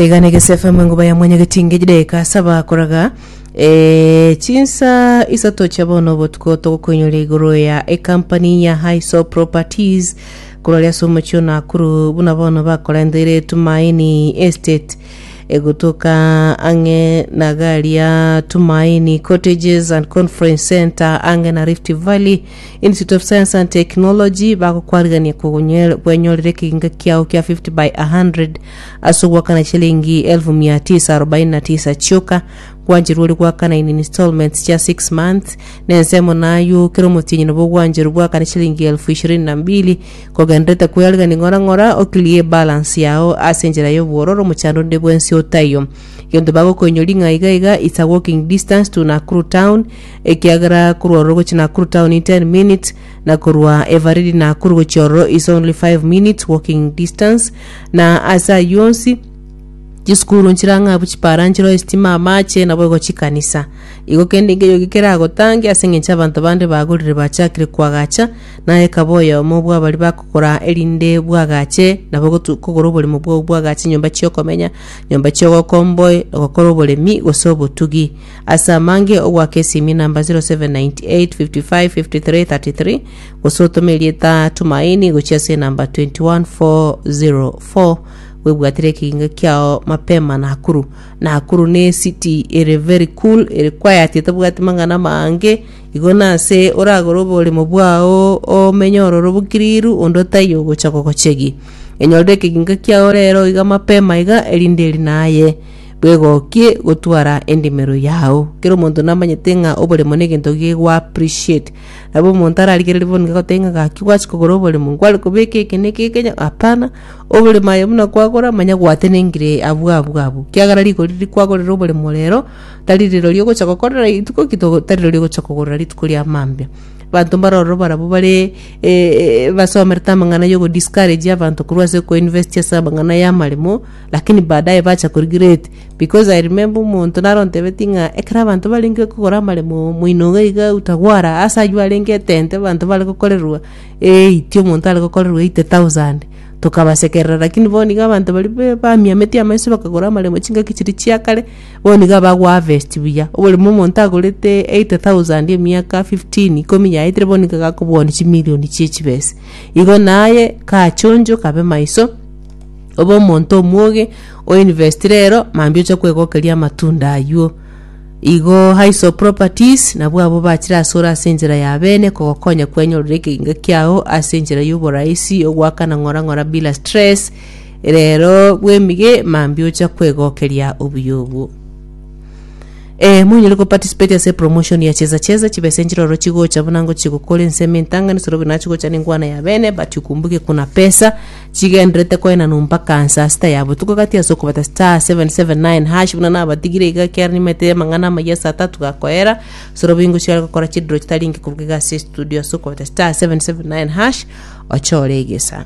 Iga negese FM enguba ya mwanyageti ngeji deka saba koraga eh, chinsa isato chia bono obotuko togokoinyora igoro ya ekampani ya Hiso Properties kororia ase omochie o Nakuru buna bono bakorendeire Tumaini Estate egotoka ang'e na gari ya Tumaini Cottages and Conference Center ang'e na Rift Valley Institute of Science and Technology bagokwarigania kogonye- kwenyorera ekeginga kiao kia 50 by 100 ase ogwakana chilingi 1949 chioka gwancherwa ore gwakana in installments chia 6 months na ensemo nayo kera omotienyi nabo ogwancherwa gwakane chilingi 22,000 kogenderete kweyarigania ng'ora ng'ora oclear balance yao ase enchera y'obwororo omochando onde bwensi otaiyo gento bagokoinyori ng'a iga iga it's a walking distance to Nakuru town ekiagera korwa ororo gochia Nakuru town in 10 minutes na korwa Eveready Nakuru gochia ororo is only 5 minutes walking distance na ase ayio onsi chisukuru nchirang'abu chipara nchireo esitima amache nabo igo chikanisa igo kende nkeyo gekeragotange ase eng'encho abanto bande bagorire bachakire koagacha naye kaba oyomo bw'abari bakogora erinde bwagache nabo gotu- kogora oboremo bwao bwagache nyomba chiokomenya nyomba chiogokomboe gokora oboremi gose obotugi Ase amange ogoaka esimi namba 0798553333 gose otome erieta Tumaini gochia ase enamba 21404 bwebwatire ekeginga kiao mapema Nakuru. Nakuru ne city ere very cool ere quiet etabwati mang'ana amange igo nase oragore oboremo bwao omenye ororo bokiriru onde otaiyo ogocha gogochegia. Enyorire ekeginga kiao rero iga mapema iga erinde eri naye. Bwegokie gotwara endimero yao. Kera omonto namanyete ng'a oboremo negento gegwa appreciate. Nabo omonto ararigererie bono gagotebia ng'a gaki gwachia kogora oboremo nkware kobeka eke na eke eke nya hapana. Oboremo aye buna kwagora manya gwatenengire abwo abwo abwo. Kiagera rigori riria kwagorire oboremo rero tari riroria ogocha gokorera rituko ki togo tari riroria ogocha kogorera rituko ria mambia. Banto mbaroro barabwo bare basomerete amang'ana yogo discourage abanto korwa ase ko invest ase amang'ana y'amaremo. Lakini baadaye bacha korigireti, because I remember omonto nare ontebetie ng'a ekero abanto barenge kogora amaremo moino iga iga utagwara ase aywo arenge etente abanto bare gokorerwa eighty omonto are gokorerwa eighty thousand tokabasekerera lakini bono iga abanto baria be- bamiametie amaiso bakagora amaremo chingaki chiria chia kare bono iga bago harvest buya oboremu omonto agorete eighty thousand emiaka fifteen ikomi yaetire bono nigo agakoboani chimilion chie chibesa igo naye kachonjo kabe maiso. Obe omonto omwoge, oinvest rero, mambia oche kwegokeria amatunda aywo. Igo Highs of Properties nabwo abo bachire asore ase enchera ya bene kogokonya kwenyorera ekegenga kiao ase enchera y'oboraisi ogwakana ng'ora ng'ora bila stress rero bwemige mambia ocha kwegokeria obuya obwo. Eh, monyare ko participate ase promotion ya cheza cheza chibesa enchiroro chigocha buna ngochi gokora ensemo entangani soro binachi gocha nengwana ya bene but ukumbuke kuna pesa chigendererete koenanwa mpaka saa sita ya botuko gati ase okobeta star 779 hash buna nabatigire iga ekiara nimanyete amang'ana amayia saa tatu gakoera soro bingo chiare gokora chidiro chitari inke koruga iga ase estudio ase okobeta star 779 hash oche ore egesani